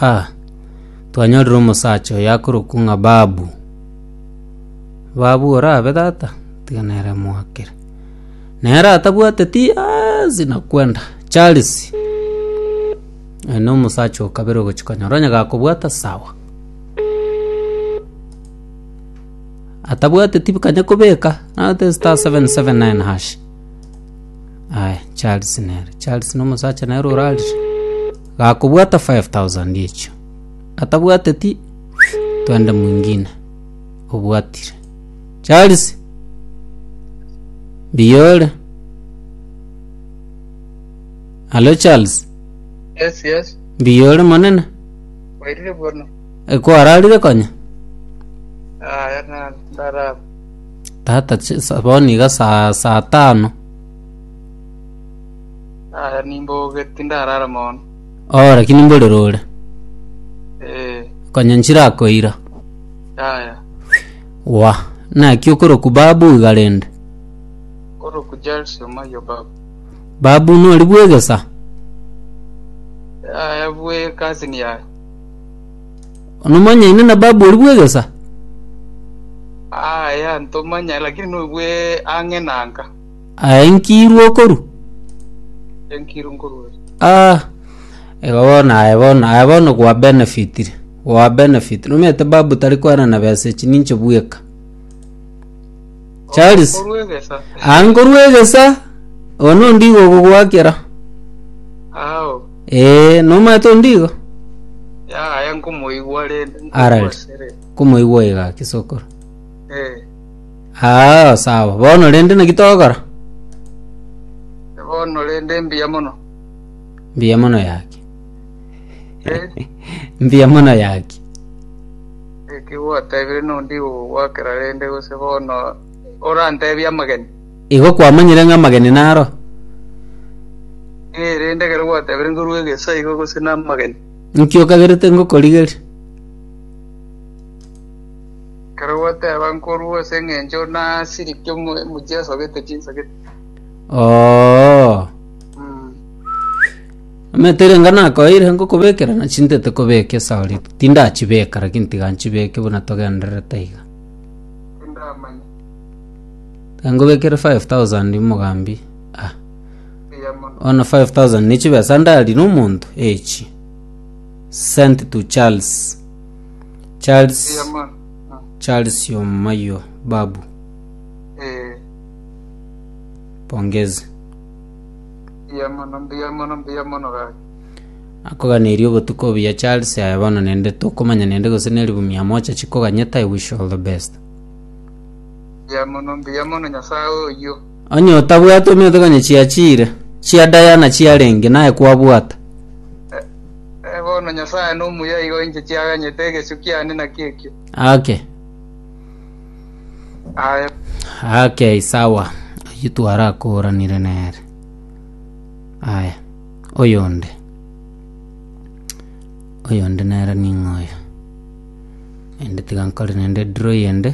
A Twanyorire omosacha oyo akorokwa ng'a Babu. Babu orabe tata? Tiga nere moakere. Nere atabwateti aasi na kwenda. Charles. Oyo nomosacha o kabere ogochi konyora onye gakobwata sawa. Atabwateti kanya kobeka nabete star seven seven nine hash. Aya Charles nere. Charles nomosacha nere orarire. Gakobwata five thousand echio. Atabwateti, twende mwingine obwatire. Charles, mbuya ore? Alo Charles, Yes, yes. mbuya ore monene? Wairire bono. Ekwararire konya? Aya na ndaraba. Tata, ch- sa- bono iga saa saa tano. Aya nimboge tindarara mono. Oo, lakini mbore rore. Eh, Konya nchirakoira. yaya. Wa, naki okoroku babu iga rende. Koro kujalsi omayo babu. Babu nori bwegesa. Yaya bwe cousin yaya. Onomanyaine na babu ori bwegesa. Aya ntomanya lakini no bwe ang'e nanka. Aenkirwe okoru? Enkirwe nkorwa ere. Ah, igo bono aye bono aye bono gwa benefitire, gwa benefit. Nomanyete babu tari kwerana besa echi ninche bweka. Charles, Nkorwa egesa. ah nkorwa egesa, one ondigo ogogwakera. Ao. Eh, nomanyete ondigo? Ya, aya nkomoigwa rende. Alright. Nkomoigwa ere. Komoigwa iga kisokoro. Eh. Aa, sawa. Bono rende naki togokora? Bono rende mbuya mono. Mbuya mono yaki. Eh, Mbuya mono yaki. eki gwatebire nondi gogwakera rende gose bono orantebie amageni. Igo kwamanyire ng'a amageni naro? Eh, rende ekero gwatebire ngorue egesa igo gose namageni. Nki okagerete ngokorigeria? Ekero gwateba nkorua ase eng'encho nasirikia omo- omochie asogete chinsagete. Oo. Mm. Omanyete erenga nakoeire ngokobekera na chintete kobeka esauri tindachibeka lakini tiga nchibeke buna togendererete iga Tindamanya. Tiga ngobekere 5000 mogambi ah Eya mono. bono 5000 ne chibesa ndari na omonto echi sent to charles Charles Eyama. Ah, Charles Omayo Babu eh, pongezi mbuya mono, mbuya mono, mbuya mono gaki. akoganeria obotuko obuya Charles aye bono nende tokomanya nende gose neribu mia moja chikoganyete I wish you all the best Mbuya mono, mbuya mono Nyasaye oyio. Onye otabwate omiotoka onye chiachiire, chia Diana chiarenge, naye kwabwata. Eh, bono Nyasae nomuya igo inche chiaganyete egesio kiane naki ekio. Ake. Aye. Ake, sawa. Oyio twarakoranire nere. Aya. Oyonde. Oyonde nere ning'oyo. Ende tiga nkore nende draw yende.